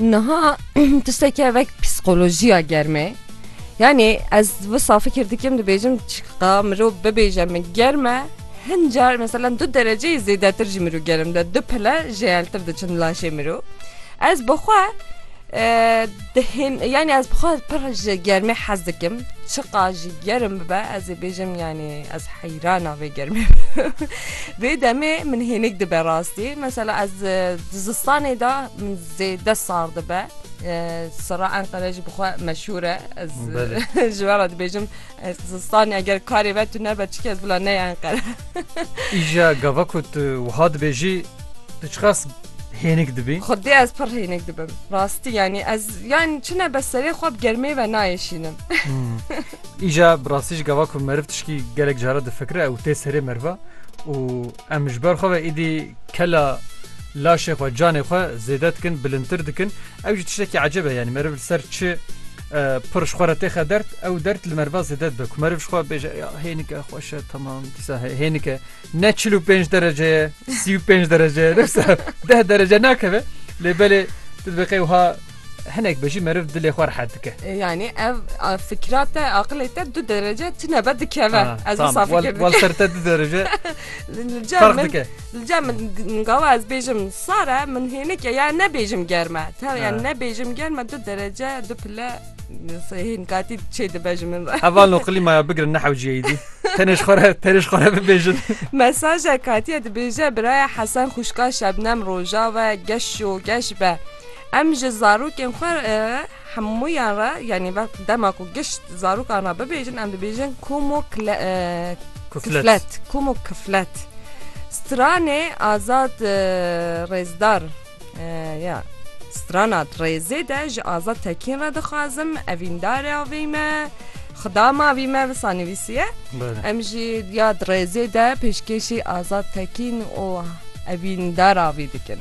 Niha tişteke vek psîkolojiya germê yanî ez bi safî kirdikim dibêjim çiqa mirov bibêje min germe hin car mesela du dereceyê zêdetir jî mirov gerim de du pile jêeltir diçin laşê mirov ez bixwe Dihên yanî ez bixwe pir ji germê hez dikim çiqa jî gerim bibe ez ê bêjim yanî ez heyrana vê germê vê demê min hênik dibe rastî mesela ez di zistanê de min zêde sar dibe sira Enqere jî bixwe meşûre ez ji we re dibêjim Ez zistanê eger karê ve tu nebe çi kes bila neye Enqere. Îja gava ku tu wiha dibêjî tu çiqas hênik dibî? Xwedê ez pir hênik dibim. Rastî yanî ez yan çi nebe serê xwe bi germê ve nayêşînim. Îja bi rastî jî gava ku meriv tişkî gelek cara difikire ew tê serê meriva û em ji ber xwe ve êdî kela laşê xwe canê xwe zêde dikin bilindtir dikin ew jî tiştekî ecebe yanî meriv li ser çi Pir ji xwe re têxe dert, ew dert li merva zêde dibe ku meriv ji xwe bêje ya hênike xweş e temam dîsa hênike ne çil û pênc derece ye sî û pênc derece ye dewsa deh derece nakeve lê belê tu dibê qey wiha hinek be jî meriv dilê xwe rehet dike. Yani ev a, fikra te aqilê te du derece tune be dikeve. Ez wisa fikir Wal ser te du derece Li car fark min dike. Li cem min gava ez bêjim sare min hênik ya ne bêjim germe tev ya ne bêjim germe du derece du pile hên katî çê dibe ji min re Heval no qilîmaya bigirin nehewciyeyî dî tenêş xore tenêş xore bibêjin Mesaja katiye dibêje biraya Hesen xuşka şebnem rojave geş û geş be em ji zarokên xwe Hemûyan re yanî wextê dema ku gişt zarokan re bibêjin em dibêjin kom û kiflet kom û kiflet. Stranê Azad Rêzdar ya Strana Rêzê de ji Azad Tekîn re dixwazim evîndare avê me Xida ma vî me wisa nivîsiye. Em jî ya Rêzê de pêşkêşî Azad Tekîn û evîndara vî dikin.